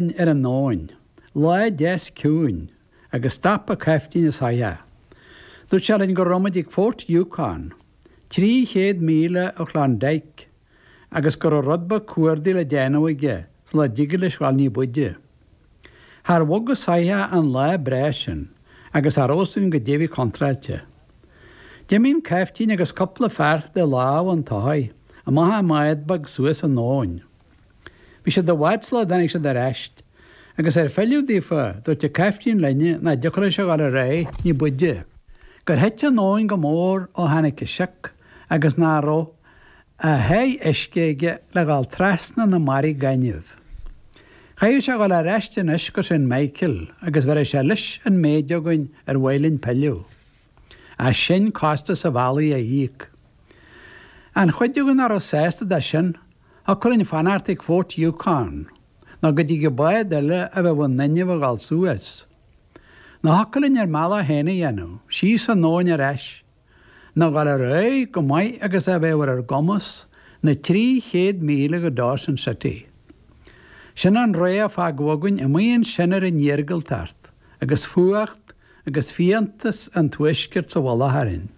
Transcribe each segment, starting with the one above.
Éirinn ar an abhainn, lá deas ciúin, agus stop an caiftín an soitheach. Dúirt sé linn go raibh muid ag Fort Yukon, trí chéad míle ó Chlondyke, agus go raibh rud beag cuardaigh le déanamh aige sula dtigeadh leis dhul ní b'fhaide. Char bhog an soitheach an lá breá sin, agus cha raibh a fhios againn goidé a bhí contráilte. D'imigh an caiftín agus cupla fear de lámha an tsoithigh amach i mbád beag suas an abhainn. Bhí siad i bhfad sula dtáinig siad ar ais. Agus ar philleadh daofa, dúirt an caiftín linn nach dtiocfadh leis a dhul ar aghaidh ní b'fhuide, gur thit an abhainn go mór ó tháinig an sioc agus nach raibh a sháith uisce aige le dhul trasna na mbarraí gainimh. Chaithfeadh sé a dhul ar ais anois go Saint Michael agus bheireadh sé leis an méid againn ar mhaith linn pilleadh, ach sinn costas an bhealaigh a íoc. An chuid againn nach raibh sásta de sin, thiocfadh linn fanacht ag Fort Yukon, nó go dtigeadh bád eile a bheadh in inmhe a ghabháil suas. Nó thiocfadh linn ár mbealach féin a dhéanamh, síos an abhainn ar ais, nó a ghabháil ar aghaidh chomh maith agus a bheadh ar ár gcumas, na trí chéad míle go Dawson City. Sin an rogha a fágadh againn amuigh ansin ar an iargúltacht, agus fuacht agus fiántas an tuaiscirt sa mhullach orainn.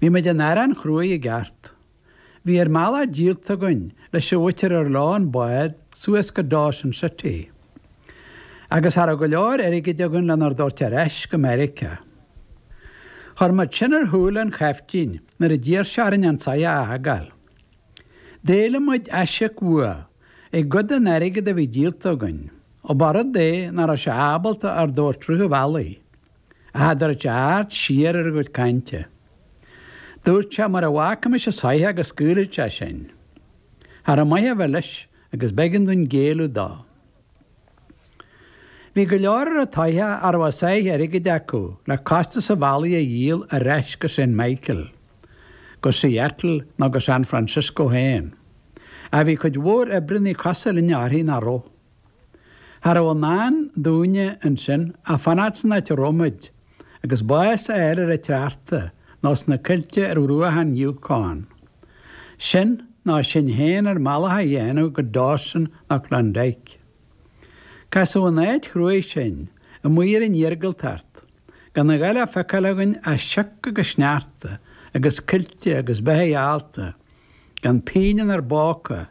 Bhí muid in arán chruaidh i gceart. Bhí ár mbealach díolta againn leis an mhuintir ar leo an bád suas go Dawson City, agus cha raibh go leor airgid againn lenár dtabhairt ar ais go Meiriceá. Chuir muid sin ar shúile an chaiftín nuair a d'iarr sé orainn an soitheach a fhágáil. D'éiligh muid aisíoc uaidh i gcuid den airgead a bhí díolta againn, ó ba rud é nach raibh sé ábalta ár dtabhairt rith an bhealaigh. a adúirt aird siar ar ár gcuid cainte. Dúirt sé, mura bhfágaimis an soitheach go scaoilfeadh sé sinn. Cha raibh maith a bheith leis agus b'éigean dúinn géilleadh dó. Bhí go leor ar an tsoitheach a raibh a sáith airgid acu le costas an bhealaigh a dhíol ar ais go Saint Michael, go Seattle nó go San Francisco féin. Ach bhí cuid mhór oibrithe cosúil linne uirthi nach raibh. Cha raibh i ndán dúinne ansin ach fanacht san áit a raibh muid, agus bás a fháil ar an tsneachta nó sna coillte ar bhruacha an Yukon. Sin, nó sinn fhéin ár mbealach a dhéanamh go Dawson nó Klondike. Casadh in áit chruaidh sinn, amuigh ar an iargúltacht, gan a dhath le feiceáil againn ach sioc agus sneachta agus coillte agus beithigh allta, gan pingin inár bpóca,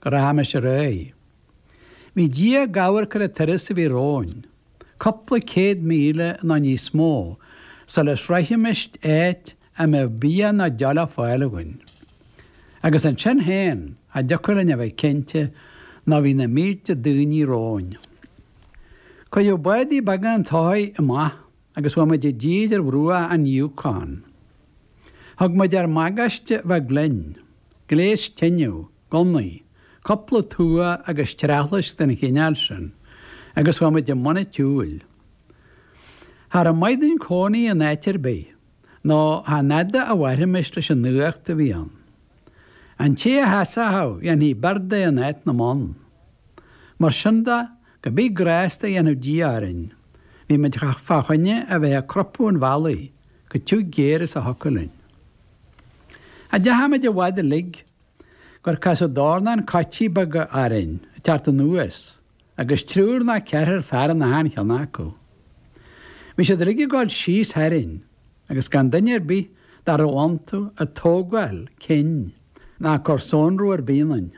go rachaimis ar aghaidh. Bhí Dia ag amharc ar an turas a bhí romhainn, cúpla céad míle nó níos mó, sula shroichfimis áit a mbeadh bia ná deoch le fáil againn. Agus ansin féin, cha dtiocfadh linn a bheith cinnte nó bhí na mílte daoine romhainn. Cuireadh bádaí beaga an tsoithigh amach agus chuaigh muid i dtír ar bhruach an Yukon. Thug muid ár mbagáiste bheag linn, gléas tineadh, gunnaí, cúpla tua agus treathlaisc den chineál sin, agus chuaigh muid i mbun an tsiúil. Cha rabh maith dúinn cónaí in áit ar bith, nó chan fhada a mhairfimis leis an fhuacht a bhí ann. An té a sheasfadh dhéanfaí beart de in áit na mbonn. Mar sin de, Cibé grásta a dhéanfadh Dia orainn, bhí muid fá choinne a bheith ag crupadh an bhealaigh chomh tiugh géar is a thiocfadh linn. Cha deachaigh muid i bhfad uilig gur casadh dornán coití beaga orainn ag teacht anuas agus triúr ná ceathrar fear in achan cheann acu. Bhí siad uilig ag gabháil síos tharainn agus gan duine ar bith dá raibh iontu ag tógáil cinn ná ag cur sonrú ar bith ionainn.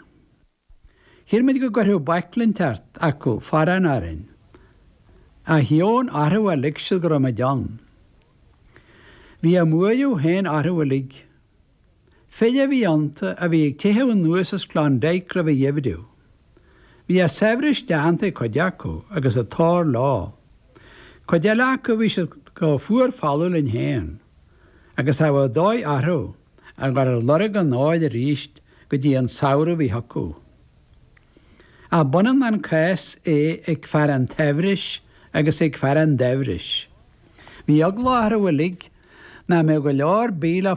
Shíl muid go gcuirfeadh baicle inteacht acu forrán orainn, ach dheamhan orthu a lig siad go raibh muid ann. Bhí a mbuaireamh féin orthu uilig. Fir a bhí iontu a bhí ag teitheadh anuas as Klondike roimh an gheimhreadh. Bhí a saibhris déanta ag cuid acu agus an t-ór leo. Cuid eile acu bhí siad chomh fuar folamh linn féin, agus cha raibh dóigh orthu. a ghabháil ar lorg an óir arís go dtí an samhradh a bhí chucu. Ach b'ionann an cás é ag fear an tsaibhris agus ag fear an daibhris. Bhí eagla orthu uilig nach mbeadh go leor bídh le